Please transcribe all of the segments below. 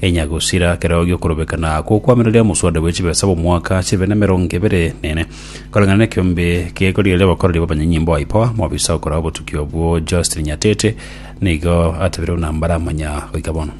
Enyagusira kereo gi'okorobeka na gokwamereria omoswada bwe chibesa bw'omwaka chibe nemerongo ebere nene, koreng'ana nekiombe gekorigereria abakoreri b'abanyanyimbo a IPOA. Mobisa okoraa obotuki obwo Justin Nyatete nigo atebire buna mbaramanya goika bono.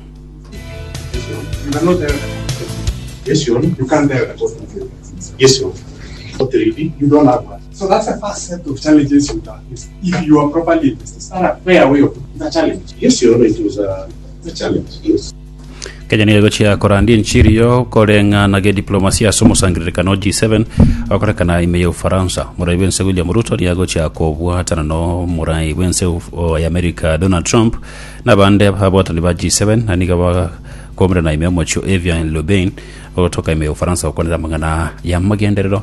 Kenya nigo egochia korandia enchiri yo koreng'a na gediplomasia ase omosangererekano G7 okorekana ime ya Ufaransa. Morai bw'ense William Ruto nigo agochia kobwatana n'omorai bw'ense of- o- ya America Donald Trump na abande abwatani ba G7 na nigo bakomerana ime omochie o Evian Lobain ogotoka ime ya Ufaransa gokwanera amang'ana y'amagenderero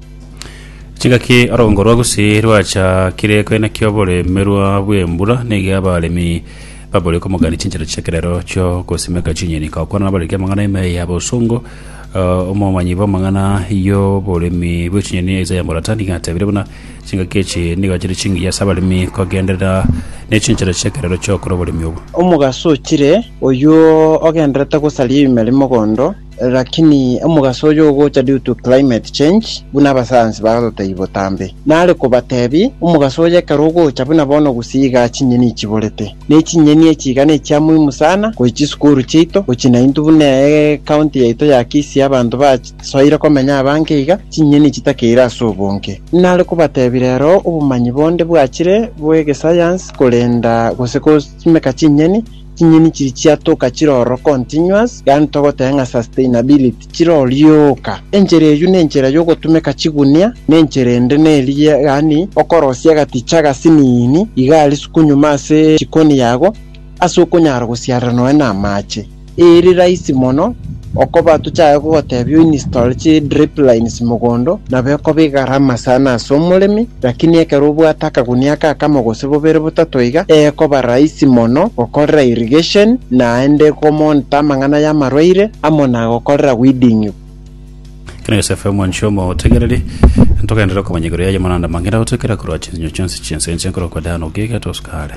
Chigaki orogongo rwa Gusii rwachakire koinaki oboremerwa bw'embura, nigo abaremi babori komogania chinchera chi'ekerero chio gosimeka chinyeni. Gokwana nabariki amang'ana ime ya bosongo, eh, omomanyi bw'amang'ana y'oboremi bwe chinyeni Isaiah Murata nigo atebire buna chingaki echi nigo chire chingiya ase abaremi kogenderera ne chinchera chi'ekerero chi'okora oboremi obo. Omogaso ochire, oyio ogendererete gosaria ime rimogondo, Lakini omogaso oyo ogocha due to climate change buna abasayansi barotei botambe. Nare kobatebie, omogaso oyo ekero ogocha buna bono gose igaa chinyeni chiborete. Ne chinyeni echi iga nechia muhimu sana gochi chisukuru chiaito, gochi nainto buna ecounty yaito ya Kisii abanto basoire komenya abange iga, chinyeni chitakeire ase obonge. Nare kobatebie rero obomanyi bonde bwachire bw'egesayansi korenda gose gosimeka chinyeni Chinyeni chiria chiatoka chire ororo continuous, yaani togoteba ng'a sustainability, chire orioka. Enchera eyio nenchera yogotumeka chigunia, na enchera ende neri yaani okorosia agaticha agasinini iga arisuku nyuma ase chikoni yago ase okonyara gosiarera nonya na amache. Eri rahisi mono. Okoba tochake gogotebia oinstall chi drip lines mogondo nabo ekoba egarama sana ase omoremi, lakini ekero obwate akagunia aka akamo gose bobere botato iga, ekoba rahisi mono gokorera irrigation naende ko monitor amang'ana y'amarwaire amo na gokorera weeding. Ekero Yosefu omwanchwa omo otegereri, ntogenderere okomanya igoro yaye moranda mange, ndagotoikera korwa chinsinyo chionsi chi'ense, inche nkorwa kwa Dan ogiga tosuka aare.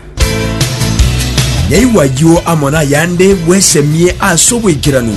Nyaigwa ayio amo nayande bwesemie ase oboikeranu.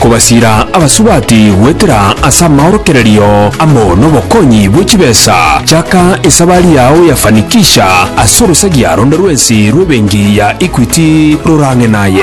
kobasiira abasubati goetera ase amaorokererio amo nobokonyi bwe chibesa, chaka esabari yao ya fanikisha ase orosagia ronde rwensi rw'ebenki ya Equity rorang'e naye.